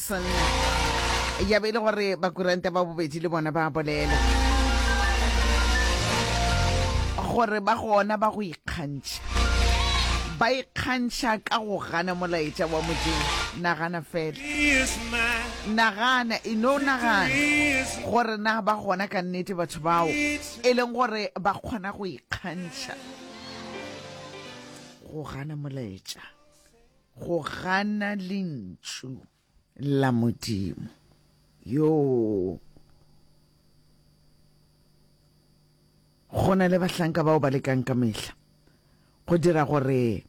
Jackson ya be e le gore bakuranta ba bobedi le bona ba bolela gore ba gona ba go ikgantšha ba ikgantšha ka go gana molaetša wa modimo nagana fela nagana e no nagana gore na ba gona ka nnete batho bao e leng gore ba kgona go ikgantšha go gana molaetša Go gana lentšu la Modimo. Yoo. Go na le bahlanka bao ba lekang ka mehla go dira gore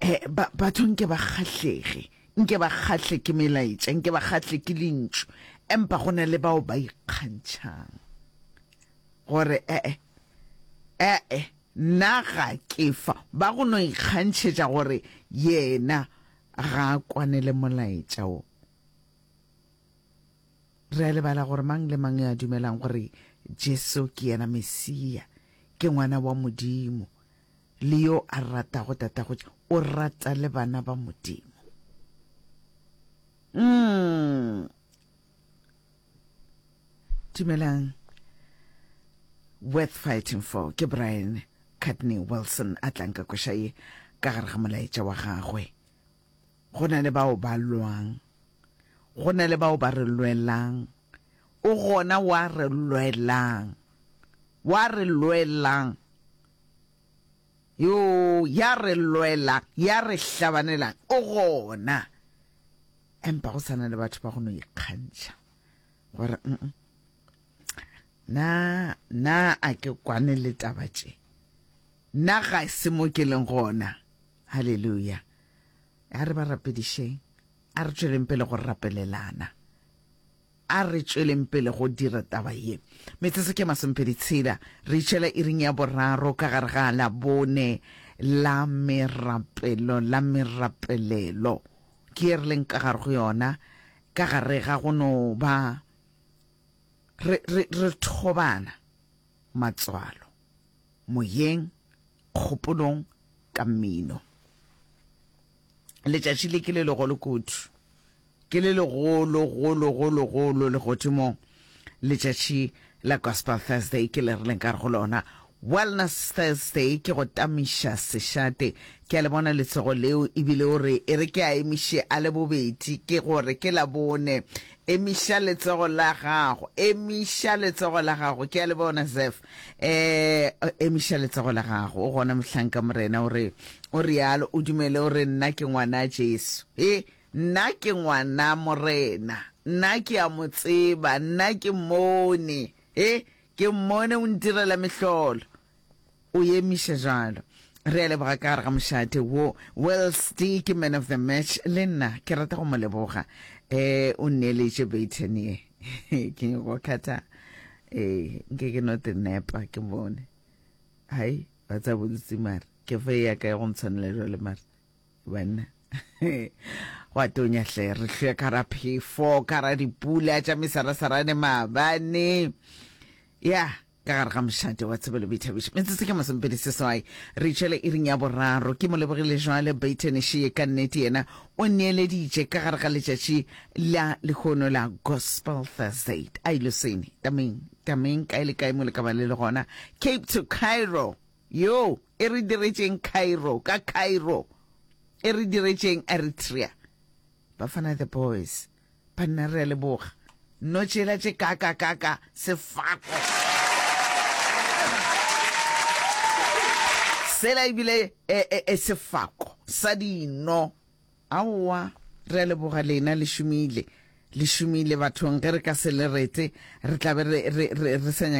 eh, ba, batho nke ba kgahlege nke ba kgahle ke melaetša nke ba kgahle ke lentšu empa go na le bao ba ikgantšhang gore ee eh, ee eh, eh, Nna ga ke fa ba go no ikgantšhetša gore yena ga a kwane le molaetša wo. Re a lebala gore mang le mang yo a dumelang gore Jesu ke yena Mesia, ke ngwana wa Modimo, le yo a ratago tatagotši, o rata le bana ba Modimo. Umm. Dumelang. Worth fighting for ke Brian Courtney Wilson a tlang ka kweša ye ka gare ga molaetša wa gagwe. Go na le bao ba lwang, go na le bao ba re lwelang, o gona wa re lwelang, wa re lwelang. Yoo, ya re lwelang, ya re hlabanelang, o gona. Empa go sa na le batho ba go no ikgantšha gore na na a ke kwane le taba tše na ga se mo ke leng gona haleluya a re ba rapedišeng a re tšweleng pele go rapelelana A re tšweleng pele go dira taba ye. Metsotso ke masomepedi tshela, re itšhela iring ya boraro ka gare ga Labone la merapelo, la merapelelo. Ke ye re leng ka gare go yona, ka gare ga go no ba re, re, re thobana, matswalo, moyeng, kgopolong, ka mmino. letšatši le ke le legolo kudu ke le legolo golo golo golo legodimong letšatši la gospel thursday ke le re leng ka re go lona wellness thursday ke go tamiša sešate ke a le bona letsego leo ebile o re e re ke a emiše a le bobedi ke gore ke la bone emiša letsego la gago emiša letsego la gago ke a le bona zef eh emiša letsogo la gago o gona mohlanka morena o re o realo o dumele o re nna ke ngwana jesu e nna ke ngwana morena nna ke a mo tseba nna ke mmone e ke mmone o ntirela mehlolo o emiša jalo re a leboga ka gare ga mošate wo wellste ke man of the match le nna ke rata go mo leboga um o nneeletše baitanie ke nyako kgatha ee nke ke no te nepa ke bone hai ba tsa bolutsi mare ke fe ya ka ya go ntshwanela jwale mare banna gwa tonya hle re hlwe ka ra phefo ka ra dipula tša mesarasarane maabane ya ka gare ga mošate wa tshebelo boithabišo metsotso ke masomepedi seswai re tšwele e ring ya boraro ke mo lebogile jwale baitenišee ka nnete yena o neeleditše ka gare ga letšatši la lehono la Gospel Thursday. Ai loseni, tameng, tameng, kae le kae mo le ka ba le le gona. Cape to Cairo, yo, e re diretšeng Cairo, ka Cairo, e re diretšeng Eritrea. Bafana the boys, banna re a leboga. No tšela tše kaka kaka sefako. Sela ebile e, e, e sefako sa dino. Aowa, re a leboga lena, le šomile. Le šomile bathong, ge re ka se le rete, re tla be re, re, re, re sa nyake.